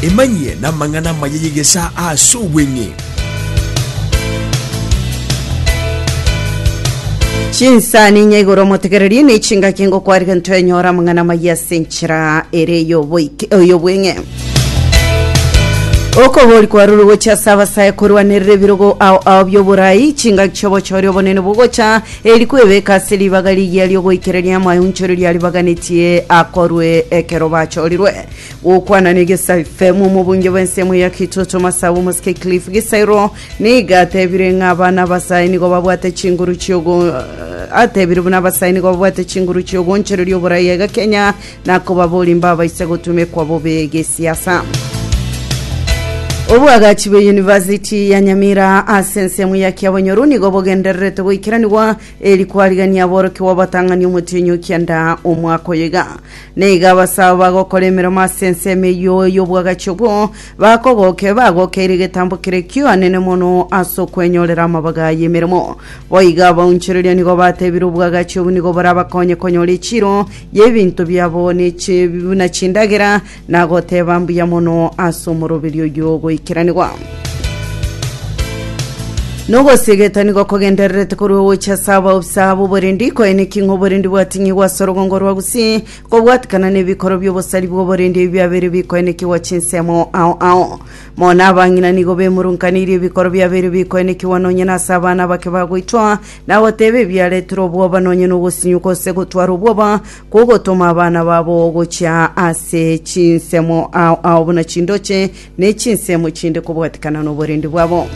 Emanyie namang'ana amaya y'egesaa aase obweng'e. Chinsa ninya igoro omotegererie ne chingaki ngokwarire ntwenyora amang'ana amaya ase enchera ere y'oboike- y'obweng'e okogori kwarure gochia ase abasae korwanerera ebirogo ao ao by'oborai chingaki chi'obochori obonene bogocha Eri kwebeka ase ribaga rigiya riogoikereria amaonchori riaribaganetie akorwe ekero bachorirwe. Gokwana na egesaife mu omobunge bw'ensemo ya Kitoto Masabu Mosike Cliff Gisairo nigo atebire ng'a abana abasae nigo babwate chinguru chiogo atebire buna abasae nigo babwate chinguru chiogoonchereria oborai egakenya Na kobaboria mbabaisa gotumekwa bobe gesiasa. Obwagachi bwe University ya Nyamira ase ensemo ya Kiabonyoru nigo bogendererete goikeranigwa eri kwarigania aborokigwa batang'ani omotienyi o kianda omwaka oyo iga. Na iga abasao bagokora emeremo ase ensemo eyio y'obwagachi obwo bakogoke bagokeire egetambo keria ki'oanene mono ase okwenyorera amabaga y'emeremo. Boigo abaunchoreria nigo batebire obwagachi obwo nigo borabakonye konyora echiro y'ebinto biabo ne chibi buna chindagera, na goteba mbuya mono ase omoroberi oyio ogoikeranigwa. Nogosigetanigwa kogendererete korwa ogocha ase abaobusa b'oborendi, koene ki ng'a oborendi bwating'igwa ase orogongo rwa Gusii, kobwatikana na ebikoro bi'obosari bw'oborendi ebi biabeire bikoenekigwa chinsemo ao ao. Mono abang'ina nigo bemurunkaneirie ebikoro biabeire bikoenekigwa nonya nase abana abake bagoitwa, na goteba ebiaretire obwoba nonye nogosinyuka gose gotwara obwoba kogotoma abana babo gochia ase chinsemo ao ao buna chindoche ne chinsemo chinde kobwatikana noborendi bwabo.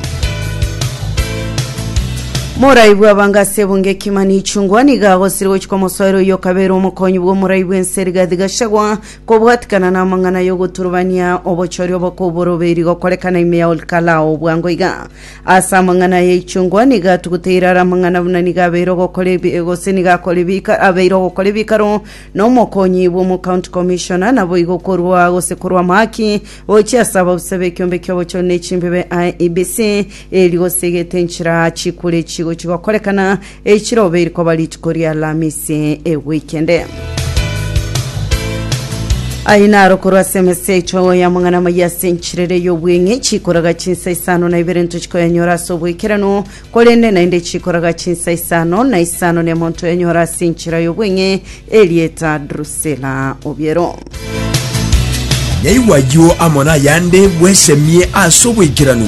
Morai bw'abanga ase ebunga ekima nichungwa niga agosire gochika omosoero oyo okabera omokonyi bw'omorai bw'ense rigathi gachagwa kobwatikana n'amang'ana y'ogoturubania obochori obokoboro beri gokorekana ime ya Olkalao bwango iga Ase amang'ana ya ichungwa nigo atuguteire are amang'ana buna nigo abeire ogokora ebi gose nigo akora ebika abeire ogokora ebikaro na omokonyi bw'omocounty commissioner naboigo korwa gose korwa amahaki gochia ase ababusa b'ekiombe ki'obochori na echimbebe IEBC eri gose egete enchera chikure chigochi gokorekana Eichirobe iri koba rituko ri'Alamisi egwikende. Aye naro korwa ase emesa echogo y'amang'ana amaya ase enchirere y'obweng'e chikoraga chinsa isano na ibere ntochikoyanyora ase obwekeranu, korende naende chikoraga chinsa isano na isano nemo ntoyanyora ase enchera y'obweng'e erieta Drusila obiero. Naigwa ayio amo nayande bwesemie ase obwekeranu.